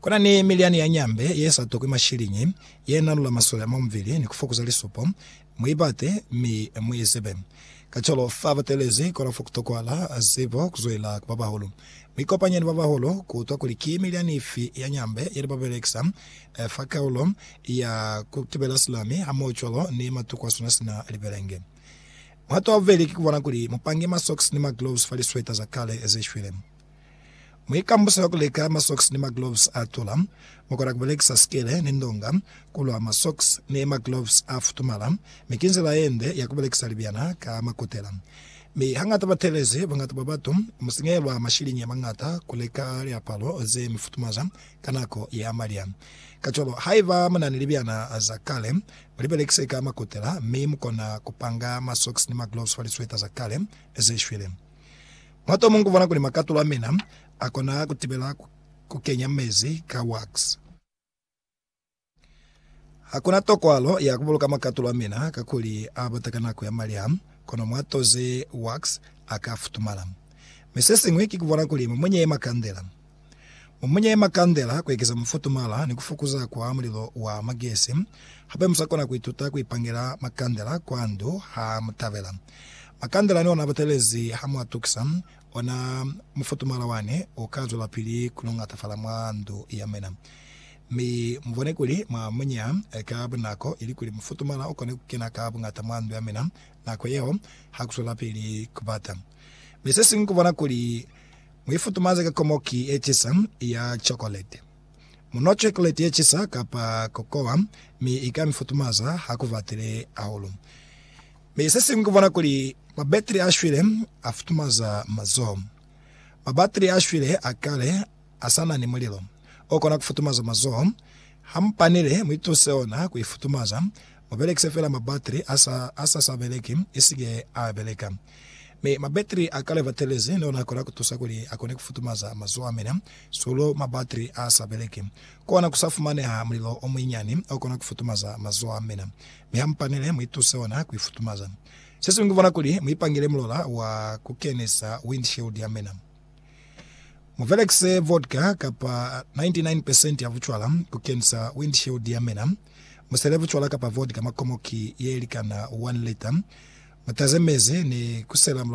Ku na ni miliani ya nyambe ye sa tokwi mashiliñi, ye nalula masole a mwa mubili ni ku fokuza lisupo. Mu i bate, mi mu i zibe. Kacwalo, fa ba teelezi kolofo ku tokwahala zibo ku zwelela ku babahulu. Mu ikopanye ni babahulu ku utwa kuli ki miliani ifi ya nyambe ye ne ba belekisa fa kaulo ya ku tibela silami hamohocwalo ni matuku a sona sina libelenge. Muhato wa bubeli ki ku bona kuli mu pange masocks ni magloves fa lisweta za kale ze shwile. Muikambuso ya ku leka masocks ni magloves a tula. Mu kona ku belekisa sikele ni ndonga ku lwa masocks ni magloves a futumala, mi ki nzila ye nde ya ku belekisa libyana ka makutela. Mi hañata batelezi boñata bwa batu mu sinyehilwa mashiliñi a mañata ku leka liapalo ze mi futumaza ka nako ya malya. Kacwalo, haiba mu na ni libyana za kale, mu li belekise ka makutela, mi mu kona ku panga masocks ni magloves fa lisweta za kale ze shwile. Mwatomo ngubona kuli makatulo amina akona kutibela kukenya mezi ka wax. Hakuna tokwalo ya kubuluka makatulo amina kakuli abata ka nako ya maliha, kono mwatoze wax aka futumala. Mi sesin'wi ki kubona kuli mumunye ye makandela. Mumunye makandela kuekeza mufutumala ni kufokuza kwa mulilo wa magesi. Hape musakona kuituta kuipangela makandela kwa ndu ha mutabela. Makandela ni ona abatelezi ha muatukisa, ona mufutumala wani uka zwelapili kuluñatafala mwa ndu yamwena. Mi mubone kuli mwamunya ka bunako ilikuli mufutumala ukone kukena ka buñata mwa ndu yamwena nako yeo hakuswelapili kubata. Mi sesiñwi kubona kuli. Mu i futumaze ka komoki ye cisa ya chokoleti. Mu nwa chokoleti ye cisa kapa kokowa, mi i ka mi futumaza ha ku batile hahulu. Mi se siñwi ku bona kuli mabatiri a shwile a futumaza mazoho. Mabatiri a shwile a kale a sa na ni mulilo o kona ku futumaza mazoho. Ha mu panile, mu ituse ona ku i futumaza, Mu belekise fela mabatri a sa, a sa sa beleki, i si ke a beleka. Mi mabatri a kale batelezi ne ona kona ku tusa kuli a kone ku futumaza mazoho a mina. Sulo mabatri a sa beleki. Ku ona ku sa fumaneha mulilo o munyinyani o kona ku futumaza mazoho a mina. Mi ha mu panile, mu ituse ona ku i futumaza. Se siñwi ku bona kuli mu ipangile mulola wa ku kenisa windshield ya mina. Mu belekise vodka kapa 99 percent ya bucwala ku kenisa windshield ya mina. Musele bucwala kapa vodka mwa komoki ye likana 1 lita. Mutaze mezi ni kusela mulolo.